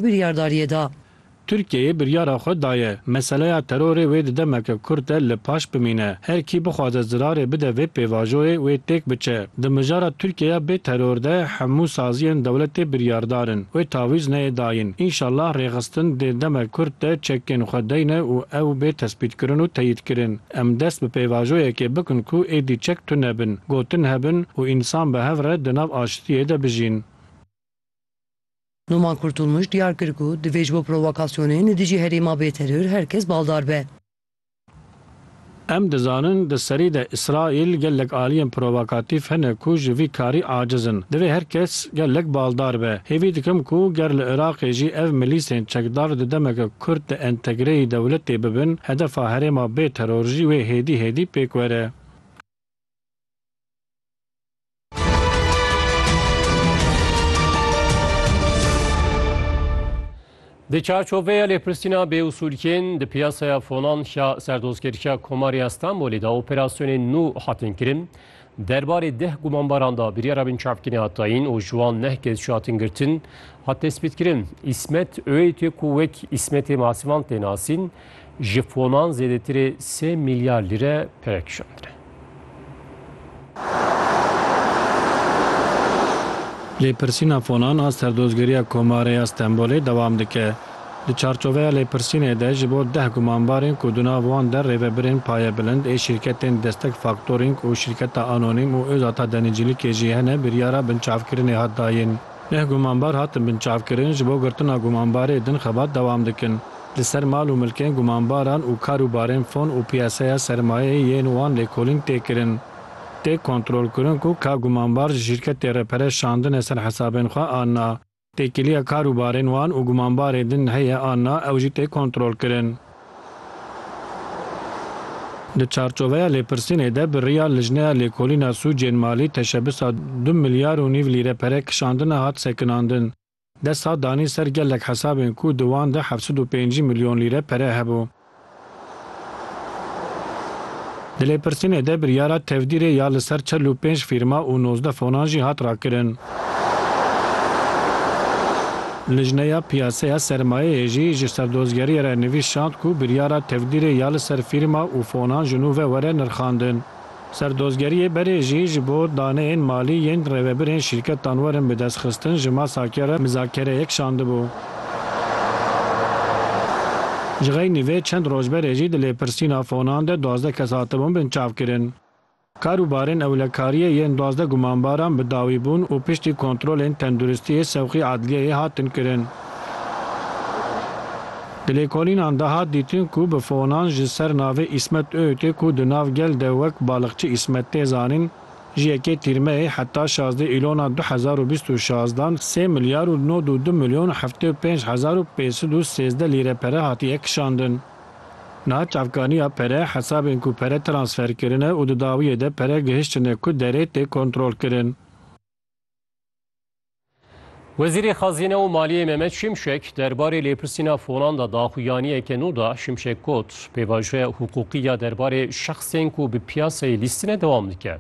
biryardariyê da. Tirkiyeyê biryara xwe daye, meseleya terorê wê di demeke kurt de li paş bimîne. Her kî bixwaze zirarê bide vê pêvajoyê wê têk biçe. Di mijara Tirkiyeya bê teror de hemû saziyên dewletê biryardar in. Wê tavîz neyê dayîn. Înşallah rêxistin dê demek kurt de çekên xwe deyne û ew bê tespîtkirin û teyîdkirin. Em dest bi pêvajoyekê bikin ku êdî çek tune bin, gotin hebin û însan bi hev re di nav aştiyê de bijîn. Noman Kurtulmuş diyar kir ku divê ji bo provokasyonên li dijî herêma bê teror her kes baldar be. Em dizanin di serî de Îsraîl gelek aliyên provokatîf hene ku ji vî karî aciz in. Divê her kes gelek baldar be. Hêvî dikim ku ger li Iraqê jî ev milîsên çekdar di demeke kurt di entegreyî dewletê bibin, hedefa herêma bê teror jî wê hêdî hêdî pêk were. Di çarçoveya lêpirsîna bêusûlkên di piyasaya fonan ya serdozgeriya Komarê ya Stenbolê de operasyonên nû hatin kirin. Derbarê deh gumanbaran da biryara binçavkirî hat dayîn û ji wan neh kes jî hatin girtin. Hat tespîtkirin Îsmet Öğüt'ê ku wek Îsmetê Masivan tê nasîn, ji fonan zêdetirê sê mîlyar lîre pere kişandine. Lêpirsîna fonan a Serdozgeriya Komarê ya Stenbolê dewam dike. Di çarçoveya lêpirsînê de ji bo deh gumanbarên ku di nav wan de rêvebirên payebilind ê şîrketên Destek Faktorîng û şîrketa Anonîm û Ozata Denîcîlikê jî hene biryara binçavkirinê hat dayîn. Neh gumanbar hatin binçavkirin, ji bo girtina gumanbarê din xebat dewam dikin. Li ser mal û milkên gumanbaran û kar û barên fon û piyaseya sermayeyê yên wan lêkolîn tê kirin. Tê kontrolkirin ku ka gumanbar ji şîrketê re pere şandine ser hesabên xwe an na. Têkiliya kar û barên wan û gumanbarê din heye an na ew jî tê kontrolkirin. Di çarçoveya lêpirsînê de bi riya Lijneya Lêkolîna Sûcên Malî teşebisa du milyar û nîv lîre pere kişandine hat sekinandin. Desthilat danî ser gelek hesabên ku di wan de heft sed û pêncî milyon lîre pere hebû. Di lêpirsînê de biryara tevdîrê ya li ser çel û pênc fîrma û nozdeh fonan jî hat rakirin. Lijneya Piyaseya Sermayeyê jî ji serdozgeriyê re nivîs şand ku biryara tevdîrê ya li ser fîrma û fonan ji nû ve were nirxandin. Serdozgeriyê berê jî ji bo daneyên malî yên rêvebirên şîrketan werin bidestxistin ji masa ke re mizakereyek şandibû. Jixeynî vê çend roj berê jî di lêpirsîna fonan de duwazdeh kes hatibûn binçavkirin. Kar û barên ewlekariyê yên duwazdeh gumanbaran bi dawî bûn û piştî kontrolên tenduristiyê sewqî edliyeyê hatin kirin. Di lêkolînan de hat dîtin ku bi fonan ji ser navê Îsmet Öğütê ku di nav gel de wek Balıkçı İsmet tê zanîn, Ji yekê Tîrmeyê heta şazdeh Îlona du hezar û bîst û şazdan sê milyar û nod û du milyon û heftê û pênc hezar û pênc sed û sêzdeh lîre pere hatiye kişandin. Niha çavkaniya pere hesabên ku pere transfer kirine û di dawiyê de pere gihiştine ku derê tê kontrolkirin. Wezîrê Xezîne û Maliyê Mehmet Şimşek derbarê lêpirsîna fonan de daxuyaniyeke nû da Şimşek got pêvajoya hiqûqî ya derbarê şexsên ku bi piyasayê lîstine dewam dike.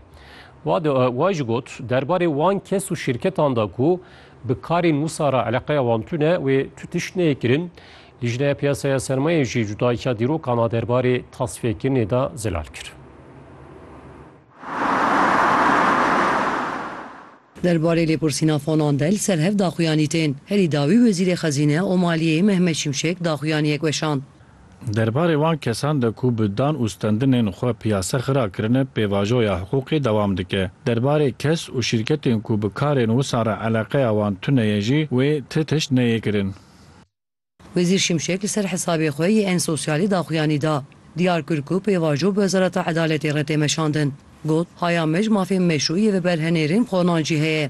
Wa jî got derbarê wan kes û şîrketan de ku bi karên wisa re eleqeya wan tune wê tu tişt neyê kirin. Lijneya Piyasaya Sermayê jî cudahiya dîrokan a derbarê tasfiyekirnê de zelal kir. Der barê lêpirsîna fonan de li ser hev daxuyanî tên. Herî dawî Wezîrê Xezîne û Maliyeyê Mehmet Şimşek daxuyaniyek weşand. Der barê wan kesan de ku bi dan û stendinên xwe piyase xira kirine pêvajoya hiqûqê dewam dike. Der barê kes û şîrketên ku bi karên wisa re eleqeya wan tune ye jî wê ti tişt neyê kirin. Wezîr Şimşek li ser hesabê xwe yê en sosyalî daxuyanî da. Diyar kir ku pêvajo bi Wezareta Edaletê re tê meşandin. Got, Haya mij mafên meşrû yê veberhenêrên qonan jî heye.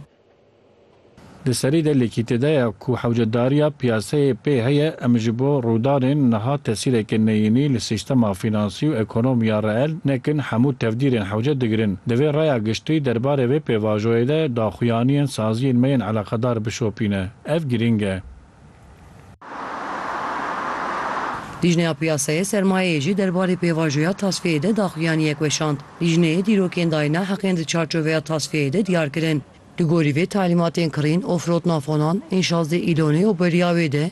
Di serî de lêkîtî de ye ku hewcedariya piyaseyê pê heye, em ji bo rûdanên niha tesîrekê neyînî li sîstema fînansî û ekonomiya reel nekin hemû tevdîrên hewce digirin. Di vê raya giştî derbarê vê pêvajoyê de daxuyaniyên saziyên me yên eleqedar bişopîne. Ev girîng e. Lijneya Piyasayê Sermayeyê jî derbarê pêvajoya tasfiyeyê de daxuyaniyek weşand. Lijneyê dîrokên dayîna heqên di çarçoveya tasfiyeyê de diyar kirin. Li gorî vê talîmatên kirîn û firotina fonan ên şazdeh îlonê û beriya wê de,